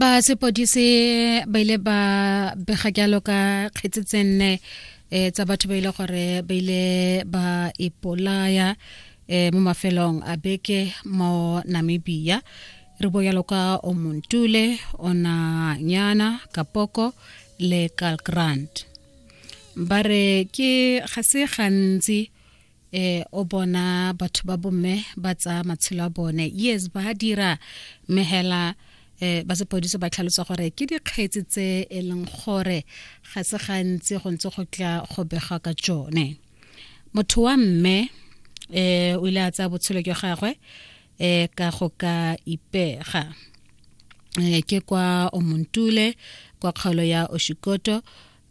ba sepodise ba ile ba bega jalo ka kgetse tse nne um tsa batho ba ile gore ba ile ba ipolaya um mo mafelong a beke mo namibia re bo jalo ka omontule onanyana kapoko le calgrand ba re ke ga se gantsi eh o bona batho ba bomme ba tsa matshelo a bone yes ba dira mehela eh ba sepodiso ba tlhalosa gore ke dikgetsi tse e leng gore ga se gantsi go ntse go tla go bega ka tsone motho wa mme eh o ile a tsaya botshelo jwa gagwe eh ka go ka ipega eh ke kwa omontule kwa kgaolo ya oshikoto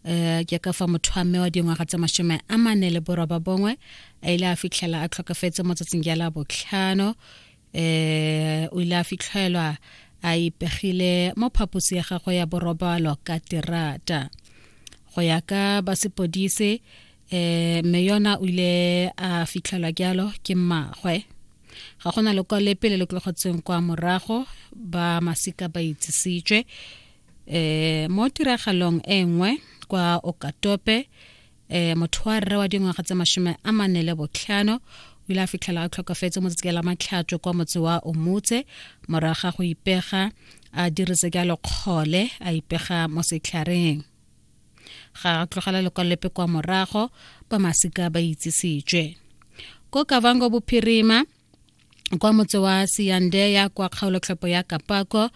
um ke ka fa motho wa mme wa dingwaga tse masome a mane le boroba bongwe a ile a fitlhela a tlhokafetse mo tsatsing ja la botlhano um o ile a fitlhelwa a ipegile mo phaposi ya gagwe ya borobalo ka terata go ya ka ba sepodise eh me yona o ile a fitlhelwa jalo ke mmagwe ga gona lekwalo lepe le le tlogotsweng kwa morago ba masika ba itsisitswe e mo tiragalong e nngwe kwa okatope e motho wa rre wa dingwaga tse mashome a mane le botlhano o ile a fitlhela a tlhokafetse mo tsatsi la matlhatso kwa motse wa omutse moraga go ipega a dirise ka lokgole a ipega mo setlhareng ga tlogela lekwalolepe kwa morago ba masika ba itsisitswe ko kavango bophirima kwa motse wa seyandeya kwa kgaolotlhopo ya kapako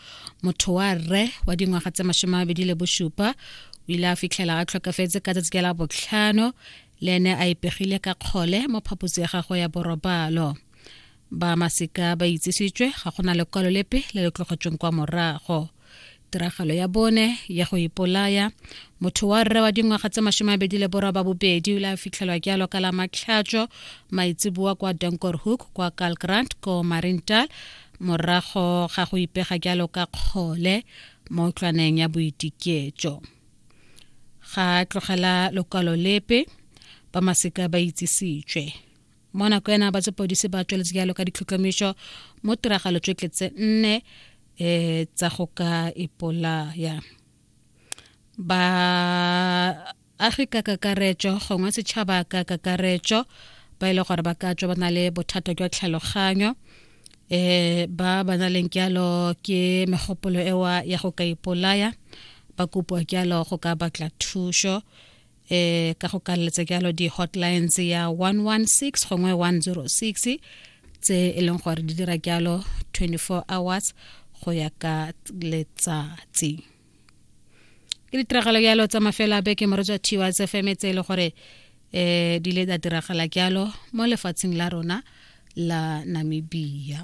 motho wa rre wa dingwaga tse masome mabedi le bosupa o ile a fitlhela a tlhokafetse ka tsatsi la botlhano le ene a ipegile ka kgole mo phaposi ya gagwe ya borobalo ba masika ba itsisitswe ga go na lekwalo lepe le le tlogotsweng kwa morago tiragalo ya bone ya go ipolaya motho wa rre wa dingwaga tse masome abedi le borwa ba bobedi o ile a fitlhelwa ke alo ka la matlhatso maitseboa kwa donkor hook kwa calgrant ko marintal morago ga go ipega ke alo ka kgole mo tlwaneng ya boitiketso ga tlogela lokwalo lepe ba maseka ba itsisitswe mo nako ena ba sepodisi ba tsweletse jalo ka ditlhotlhomišo mo tiragalo tse tletse nne um tsa go ka ipolaya ba agi ka kakaretso gongwe setšhaba ka kakaretso ba e le gore ba ka tswa ba na le bothata jwa tlhaloganyo um ba ba na leng jalo ke megopolo ewa ya go ka ipolaya ba kopiwa jalo go ka batla thuso eh ka go kalletsa jalo di-hotlines ya 116 gongwe 106 tse e leng gore di dira jalo 24 hours go ya ka letsatsi ke ditiragalo jalo tsa mafelo a beke moro jwa tiwa tse feme tse e le gore um di ile tsa diragala jalo mo lefatsheng la rona la namibia